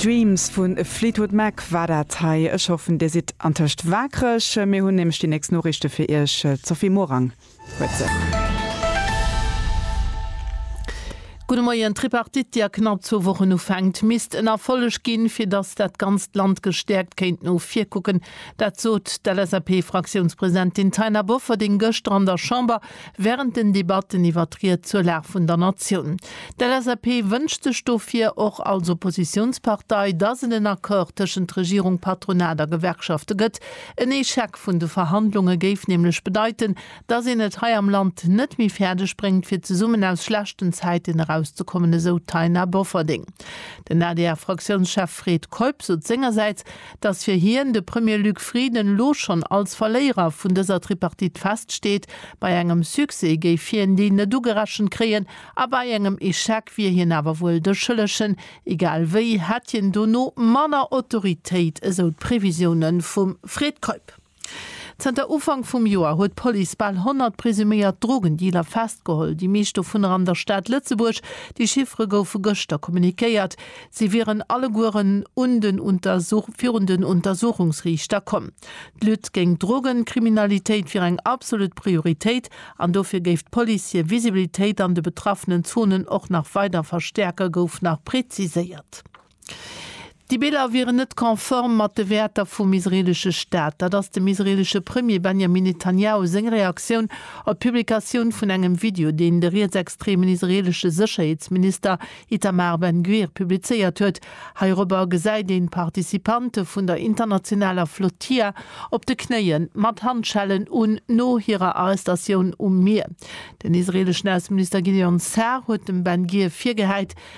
Dreams vun Fleetwood Mac war dat hei. Ech hoffen dir sidd antëscht waakreg. Mir hunn nämlech déi nächst Noriichte fir iech. D'Sophie Morang huet se. Gudde Moien. D'Tripartite, déi a knapp zwou Wochen ufänkt, misst en Erfolleg ginn, fir datt dat ganzt Land gestäerkt kéint no vir kucken. Dat sot d'LSAP-Fraktiounspresidentin Taina Bofferding gëschter an der Chamber. Während den Debatten iwwer d'Ried zur Lag vun der Natioun. D'LSAP wënscht sech dofir, och als Oppositiounspartei, dass et en Accord tëschent Regierung, Patronat a Gewerkschafte gëtt. En Echec vun de Verhandlunge géif nämlech bedeiten, dass een et hei am Land net méi fäerdeg bréngt, fir zesummen aus schlechten Zäiten erauszekommen, esou d'Taina Bofferding. Den adr-Fraktiounschef Fred Keup sot sengersäits, Dass fir hien, de Premier Luc Frieden, elo schonn als Verléierer vun dëser Tripartite feststeet, bei engem Succès géif hien deen net ugerechent kréien a bei engem Echec wier hien awer wuel de Schëllegen, egal wéi hätt hien dono manner Autoritéit, esou d'Previsioune vum Fred Keup. Zënter Ufank vum Joer huet d'Police bal 100 presuméiert Drogendealer festgeholl, déi meescht dovunner an der Stad Lëtzebuerg. Déi Chiffere goufe gëschter kommunikéiert. Si wieren allegueren virun den Untersuchungsriichter komm. D'Lutte géint d'Drogenkriminalitéit wier eng absolut Prioritéit an dofir géif d'Police hir Visibilitéit an de betraffenen Zonen och nach weider verstäerken, gouf nach preziséiert. Déi Biller wieren net konform mat de Wäerter vum israeelesche Staat. Dat ass dem israeelesche Premier Benjamin Netanjahu seng Reaktioun op d'Publikatioun vun engem Video, deen de rietsextremen israeelesche Sécherheetsminister Itamar Ben-Gvir publizéiert huet. Heirobber gesäit een d'Participante vun der internationaler Flotilla op de Knéie mat Handschellen un, no hirer Arrestatioun um Mier. Den israeeleschen Ausseminister Gideon Sa'ar huet dem Ben-Gvir virgehäit,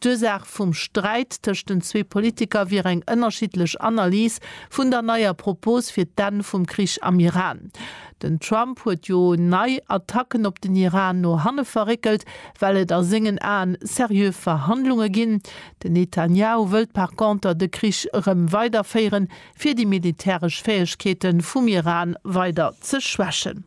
D'Ursaach vum Sträit tëscht den zwee Politiker wier eng ënnerschiddlech Analys vun der neier Propos fir d'Enn vum Krich am Iran. Den Trump huet jo nei Attacken op den Iran no hanne verréckelt, well et a sengen Aen seriö Verhandlunge ginn. Den Netanjahu wëllt par conter de Krich erëm weiderféieren, fir déi militäresch Fäegkeete vum Iran weider ze schwächen.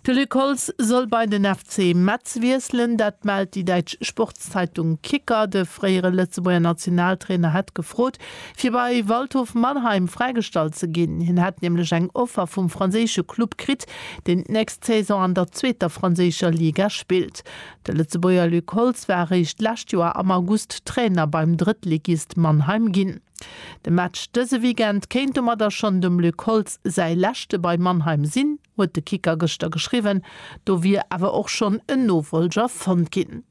De Luc Holtz soll bei den FC Metz wiesselen. Dat mellt déi däitsch Sportszeitung Kicker. De fréiere Lëtzebuerger Nationaltrainer hätt gefrot, fir bei Waldhof Mannheim fräigestallt ze ginn. Hien hätt nämlech eng Offer vum franséische Club kritt, deen d'nächst Saison an der zweeter franséischer Liga spillt. De Lëtzebuerger Luc Holtz war eréischt d'lescht Joer am August Trainer beim Drëttligist Mannheim ginn. De Match dëse Weekend kéint domadder schonn dem Luc Holtz säi leschte bei Mannheim sinn, huet de Kicker gëschter geschriwwen. Do wier awer och schonn en Nofollger fonnt ginn.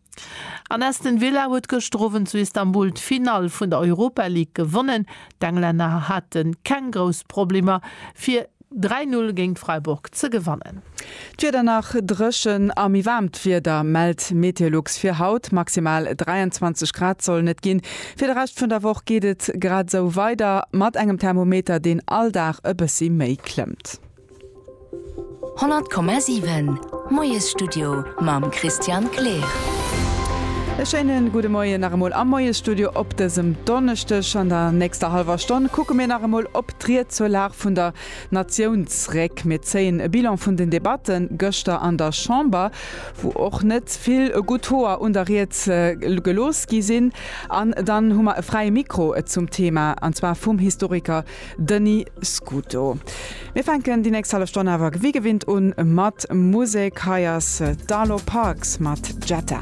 An Aston Villa huet gëschter Owend zu Istanbul d'Finall vun der Europa League gewonnen. D'Englänner hate keng grouss Problemer, fir Dräi Null géint Freiburg ze gewannen. D'Wieder nach dréchen a méi waarmt Wieder mellt Meteolux fir haut. Maximal 23 Grad sollen et ginn. Fir de Rescht vun der Woch geet et grad esou weider mat engem Thermometer, deen all Dag e bëssi méi klëmmt. 100,7 Moiesstudio mam Christian Kleer. E schéine gudde Moien nach emol am Moiesstudio op dësem Donneschdeg. An der nächster hallwer Stonn kucke mir nach emol op. D'Ried zur Lag vun der Natioun zréck. Mir zéien e Bilan vun den Debatte gëschter an der Chamber, wou och net vill gutt Hoer un der Ried gelooss gi sinn. An dann hu mer e fräie Mikro zum Thema, an zwar vum Historiker Denis Scuto. Mir fänken déi nächst hallef Stonn awer wéi gewinnt un mat Musek. Hei ass d'Arlo Parks mat Jetta.